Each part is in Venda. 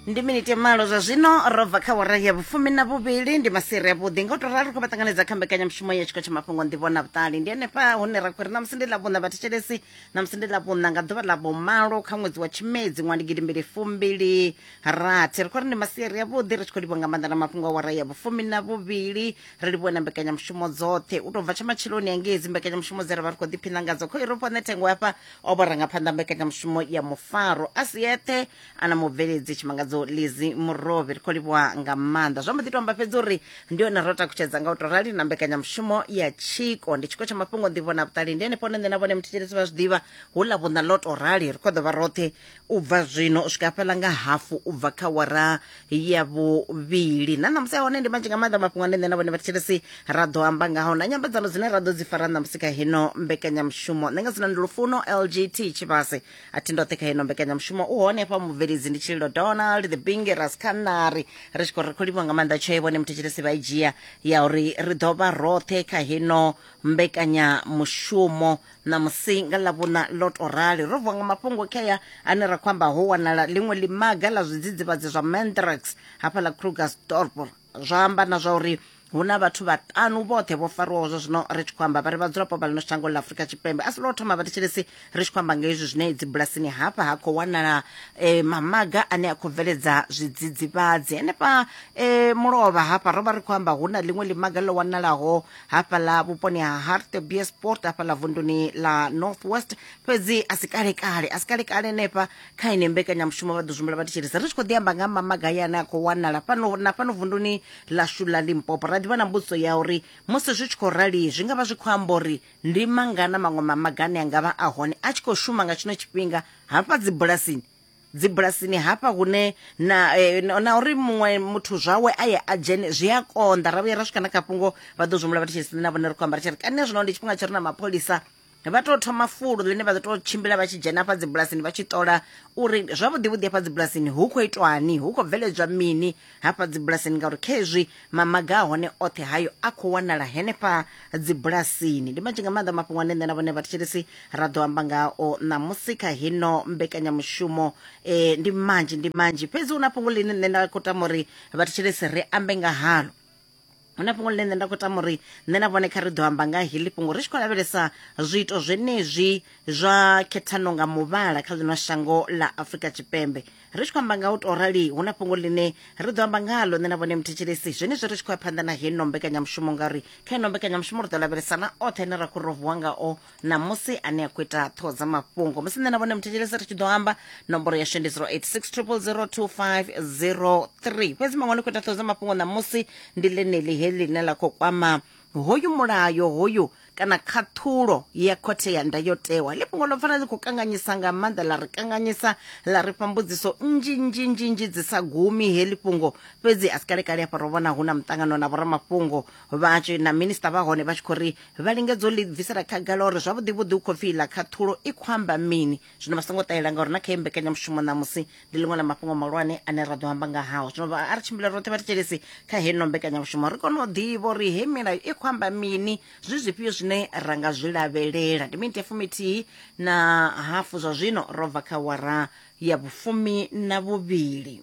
ndi miniti ya malo zwa zwino ro bva kha wara ya vhufumi na vhuvhili ndi masiri a vhuḓi nga u to ralo kho vha ṱanganedza kha mbekanyamushumo ya tshiko tsha mafhungo nḓivho na vhuṱali ndi henefha hune ra khou ri namusi ndi ḽavhuṋa vhathetshelesi namusi ndi ḽavhuṋa nga ḓuvha ḽa vhumalo kha ṅwedzi wa tshimedzi ṅwa ndi gidimbili fumbili rathi ri khou ri ndi masiari a vhuḓi ri tshi khou livhuwa nga maanḓa na mafhungo a wara ya vhufumi na vhuvhili ri livhuwe na mbekanyamushumo dzoṱhe u tou bva tsha matsheloni angei dzi mbekanyamushumo dze ra vha ri khou ḓiphina ngadzo kho iropo nṋe thengo hafha o vhurangaphanḓa mbekanyamushumo ya mufaro a si eṱhe ana mubveledzi tshimangadzo lizi murovhi ri khou livhuwa nga maanḓa zwo mbo ḓi to amba fhedzi uri ndi yone ro takutshedza nga u to rali na mbekanyamushumo ya tshiko ndi tshiko tsha mafhungo nḓivho na vhuṱali ndi henefho hone nṋe na vhone muthetshelesi vha zwi ḓivha hu ḽa vhuṋa ḽo to rali ri khou ḓo vha roṱhe u bva zwino u swika fhela nga hafu u bva kha wara ya vhuvhili na ṋamusi a hone ndi manzhi nga maanḓa mafhungo ane nṋe na vhone vhathetshelesi ra ḓo amba ngaho na nyambedzano dzine ra ḓo dzi fara ṋamusi kha hino mbekanyamushumo nṋe nga dzina ndi lufuno lgt tshivhase a thi ndoṱhe kha hino mbekanyamushumo u hone hafha mubveledzi ndi tshililo donald the binge raskanari ri tshi khou ri khou livhiwa nga maanḓa tshoe vhone muthetshelesi vha i dzhia ya uri ri ḓo vha roṱhe kha hino mbekanyamushumo ṋamusi nga ḽavhuna ḽo tou rali ro vuwa nga mafhungo khea ane ra khou amba ho wanala ḽiṅwe ḽimaga ḽa zwidzidzivhadzi zwa mandrax hafha ḽa krugersdorp zwa amba na zwa uri hu na vhathu vhaṱanu vhoṱhe vho fariwaho zwa zwino ri tshi khou amba vha ri vhadzulapo vha ḽino shango ḽa afurika tshipembe a si lwo thoma vhathetshelesi ri tshi khou amba nga hezwi zwine dzibulasini hafha ha khou wanala e, mamaga ane a khou bveledza zwidzidzivhadzi henefha e, mulovha hafha ro vha ri khou amba hu na ḽiṅwe ḽimaga ḽo wanalaho hafhaḽa vhuponi ha hartbeesport hafhaḽa vunduni ḽa northwest fhedzi a si kalekale a si kalekale henefha kha ine mbekanyamushumo vha ḓo zwimbula vha thetshelesa ri tshi khou ḓi amba nga mamagaya ane a khou wanala fhano na fhano vunduni ḽashu ḽa limpopo ra ḓivha na mbudziso ya uri musi zwi tshi khou rali zwi nga vha zwi khou amba uri ndi mangana maṅwe mamagane a nga vha a hone a tshi khou shuma nga tshino tshifhinga hafha dzibulasini dzibulasini hafha hune na eh, na uri muṅwe muthu zwawe a ye a dzhene zwi a konḓa ra vhuya ra swika na kha fhungo vha ḓo zwimula vhathu tshisi na vhone ri khou amba ri tshi ri kane zwino ndi tshifhinga tsho ri na mapholisa vha tou thoma fulo ḽine vha ḓo tou tshimbila vha tshi dzhena hafha dzibulasini vha tshi ṱola uri zwavhuḓi vhuḓi hafha dzibulasini hu khou itwani hu khou bveledzwa mini hafha dzibulasini ngauri khezwi mamaga a hone oṱhe hayo a khou wanala henefha dzibulasini ndi manzhi nga maanḓa mafhungo ane nṋe na vhone vhathetshelesi ra ḓo amba ngao ṋamusi kha hino mbekanyamushumo um ndi manzhi ndi manzhi fhedzi hu na fhungo ḽine nṋe nda khou tama uri vhathetshelesi ri ambe nga halo hu na fhungo ḽine nṋe nda khou tama uri nṋe na vhone kha ri ḓo amba nga heḽi fhungo ri tshi khou lavhelesa zwiito zwenezwi zwa khethano nga muvhala kha ḽino shango ḽa afurika tshipembe ri tshi khou amba nga u tou rali hu na fhungo ḽine ri ḓo amba ngalo nṋe na vhone muthetshelesi zwenezwi ri tshi khou ya phanḓa na heno mbekanyamushumo ngauri kha ino mbekanyamushumo ri ḓo lavhelesana oṱhe ane ra khou ro vuwa ngao ṋamusi ane a khou ita ṱhoho dza mafhungo musi nṋe na vhone muthetshelesi ri tshi ḓo amba nomboro yashu ndi 0860002503 fhedzi maṅwe ni khou ita ṱhoho dza mafhungo ṋamusi ndi ḽeneḽi he ḽine ḽa khou kwama hoyu mulayo hoyu kana khaṱhulo ya khothe ya ndayotewa ḽi fhungo ḽo pfana ḽi khou kanganyisa nga maanḓa ḽa ri kanganyisa ḽa ri fha mbudziso nnzhi nnzhi nnzhi nnzhi dzi sa gumi he ḽi fhungo fhedzi a si kalekale hafha ro vhona hu na muṱangano na vhoramafhungo vha na minista vha hone vha tshi khou ri vha lingedza u ḽi bvisela khagala uri zwavhuḓi vhuḓi u khou pfi iḽa khaṱhulo i khou amba mini zwino vha songo ṱahela ngauri na kha iyi mbekanyamushumo ṋamusi ndi ḽiṅwe ḽa mafhungo mahulwane ane ra ḓo amba nga hao zwino vha a ri tshimbile roṱhe vha thetshelesi kha heno mbekanyamushumo ri kone u ḓivha uri he milayo i khou amba mini zwi zwifhio zwine ra nga zwi lavhelela ndi miniti ya fumithihi na hafu zwa zwino ro bva kha wara ya vhufumi na vhuvhili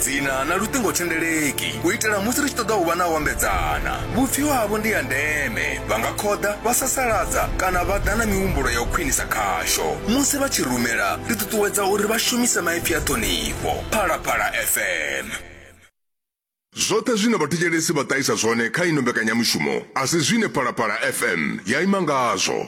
Dzina na luṱingothendeleki u itela musi ri tshi ṱoḓa u vha na u ambedzana. Vhupfiwa havho ndi ha ndeme, vha nga khoḓa, vha sasaladza kana vha ḓa na mihumbulo ya u khwinisa khasho. Musi vha tshi rumela, ri ṱuṱuwedza uri vha shumise maipfi a ṱhonifho. Phalaphala FM. Zwoṱhe zwine vhathetshelesi vha ṱahisa zwone kha ino mbekanyamushumo a si zwine Phalaphala FM ya ima ngazwo.